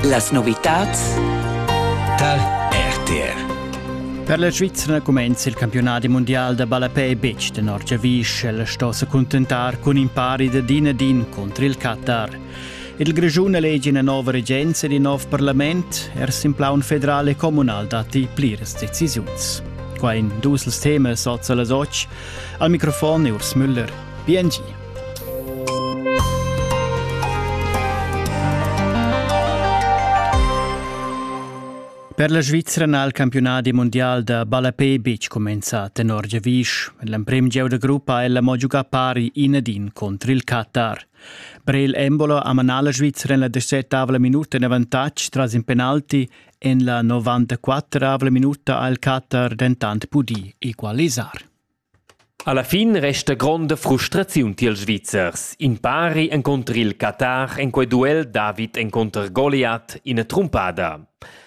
Las novitads tar RTR. Per la Svizzera cumenza il campionat mondial da ballapè betg tenor giavisch. El sto se contentar cun in pari da din ad din contr il Qatar. Il Grischun elegi ina nova regenza ed in nov parlament. Er sin plaun federal e communal datti pliras decisiuns. Qua in dus temas oz las otg. Al microfon Urs Müller. Bien Per la Svizra n'ha il campiunadi mundial da ballapè betg cumenzà tenor giavisch. L'emprim gieu da gruppa ha ella mo giugà pari in ad in contr il Qatar. Per il Embolo ha manà la Svizra en la decettavla minuta in avantatg tras in penalti. En la 94 minuta ha il Qatar dentant pudì equalisar. Alla fin resta gronda frustraziun tiels Svizzers. In pari encunter il Qatar en quei duel David encunter Goliat ina trumpada.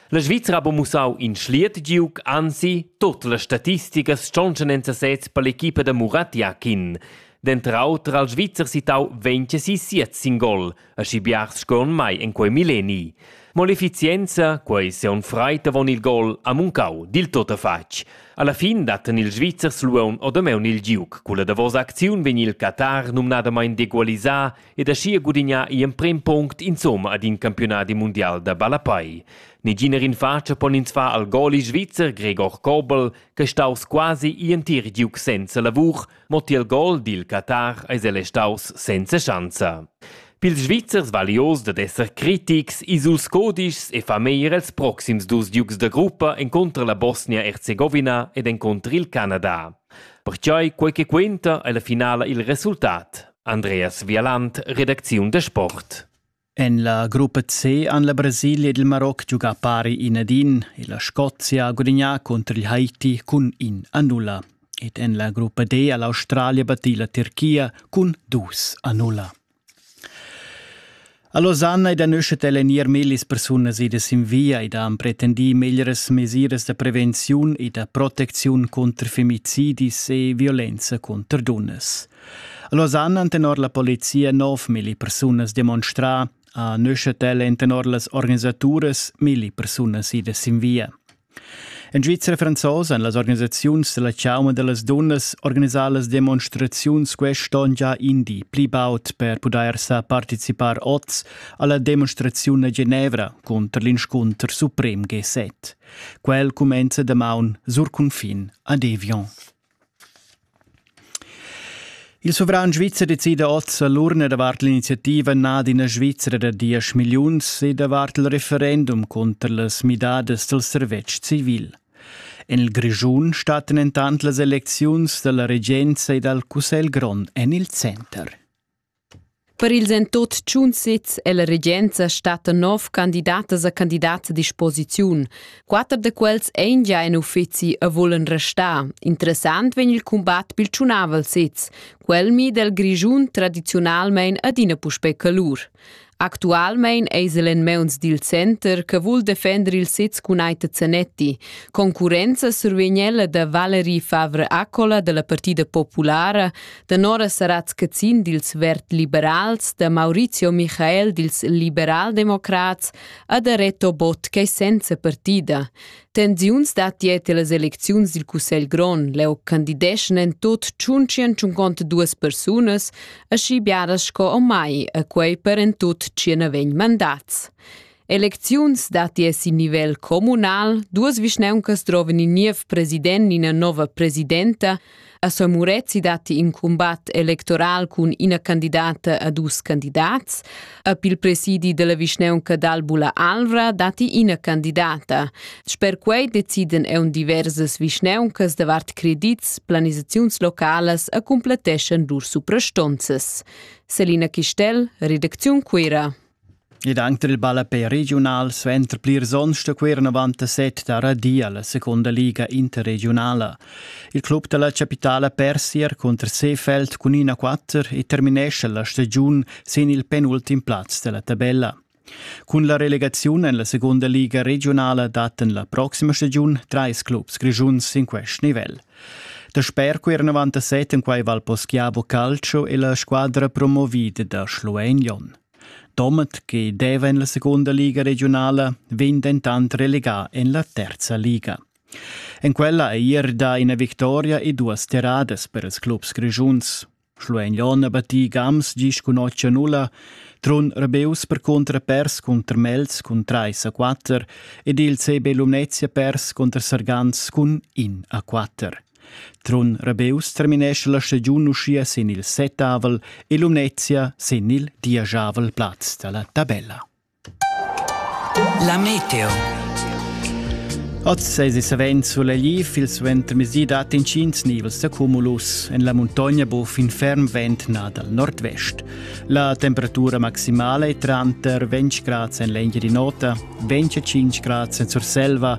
La Svizra ha buca mussau in schliet giug, anzi, tut las statisticas tschontschan en sesez per l'equipa da Murat Yakin. Denter auter ha il Svizzer sittau 26 sin gol, aschi biars sco en mai en quei milleni. Mo l'efficienza, quei seun freit avon il gol, ha muncau dil tot fatg. Alla fin datten ils Svizzers luon odameun il giuc. Culla davosa acziun vegn il Qatar numnadamain degualisà ed aschia gudignà i emprem punct insomma ad in campionadi mundial da ballapai. Neginer in faccia pon ins fa al goli svizzer Gregor Kobel, che staus quasi i entir giuc senza lavur, Mo tiel gol dil Qatar eis el restaus senza schanza. Pils Svizzers vali oz dad esser critics, ils dus codischs e fa meglier els proxims dus giugs da gruppa encontrer la Bosnia-Herzegovina ed encontrer il Canada. Pertgei quei che quenta ei la finala il resultat. Andreas Vialant, redacziun da sport. En la gruppa C han la Brasilia ed il Maroc giugà pari in ad in e la Scozia ha gudagnà cunter il Haiti cun in a nulla. Ed en la gruppa D ha l'Australia battì la Tirchia cun dus a nulla. A Losanna ed a Neuchâtel èn ier millis persunas idas sin via ed han pretendì meglieras mesiras da prevenziun e da protecziun cunter femicidis e violenza cunter dunnas. A Lausanne han tenor la polizia nov milli persunas demonstrà, a Neuchâtel èn tenor las organisaturas milli persunas idas sin via. En Svizra franzosa han las organisaziuns della Chauma de las Dunnas organisà las demonstraziuns quest'onn già in di pli baud per pudair sa participar oz alla demonstraziun a Genevra conter l'inscunter suprem G7. Quel cumenza damaun sur cunfin a Devion. Il suvran svizzer decida oz l'urna davart l'iniziativa Nad ina Svizra da diesch milliuns e davart il referendum cunter las midadas dal servetsch civil. En il Grischun stattan entant las elecziuns dalla regenza e dal Cussegl grond en il center. Per ils en tot tschun sez è la regenza stata nov candidatas a candidats a disposiziun. Quatter da quels ein gia en uffizi e volen restar. Interessant vegn il combat pil tschunavel sez. Quel mi del Grischun tradizionalmein adina puspei calur. Actualmein eis el en meuns dil center che vul defender il sez cun Aita Zanetti. Concurrenza survegn ella da Valerie Favre Accola dalla Partida Populara, da Nora Saratz-Cazin dils Verd-Liberals, da Maurizio Michael dils Liberaldemocrats e da Reto Bott ch'ei senza partida. Tensiuns dat dieta las elecziuns dil Cussegl grond. Leu candideschan en tut tschuntschien tschunconta duas persunas, aschi biaras sco o mai, a quei per en tut tschien vegn mandats. Elecziuns dati es in nivel communal, duas vischneuncas droven in niev president, ina nova presidenta, A Sor Murezi datti in cumbat electoral cun ina candidata a dus candidats. A pil presidi della vischneunca d'Albula Alvra datti ina candidata. Sper quei deciden eun diversas vischneuncas davart credits, planisaziuns localas e cumpletteschan lur suprastonzas. Selina Chistel, Redakziun Cuira. Ed anc tar il ballapè regiunal suenter plirs onns sto quai ir enavant a set da radia la secunda liga interregiunala. Il club da la chapitala persi er cunter Seefeld cun 1-4 e terminescha la stagiun sin il penultim plaz da la tabella. Cun la relegaziun en la segunda liga regionala daten la proxima stagiun trais clubs grischuns sin quest nivel. Da sper quir 97 en quai val Poschiavo Calcio e la squadra promovida da Schluein Jon. Domat che deva en la secunda liga regiunala vegn dentant relegà en la terza liga. En quella ei er dà ina victoria e duas terradas per ils clubs grischuns. Schluegnon ha battì Gams gis cun 8-0, Trun Rebeus per contrapers cunter Mels cun 3-4 ed il CB Lumnezia pers cunter Sargans cun 1-4. Trun Rabeus terminescha la stagiun uschia sin il settavel e Lumnezia sin il dieschavel plaz da la tabella. La meteo. Oz es savens sulegliv, il suentermezdi dat intgins nivels da cumulus. En la muntogna bu fin ferm vent na dal nord-vest. La temperatura maximala è tranter 20 grads en l'engia di nota, 25 grads en Surselva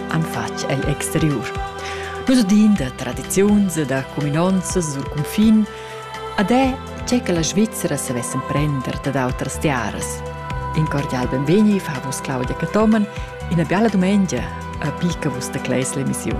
han fatg egl exteriur. L'usudin da tradiziuns e da cuminonzas sur cunfin ad è che che la Svizzera savess emprender dad outras tiaras. In cordial benvegni fa vus Claudia Catoman, ina biala dumengia a picca vus da Cleis l'emissiun.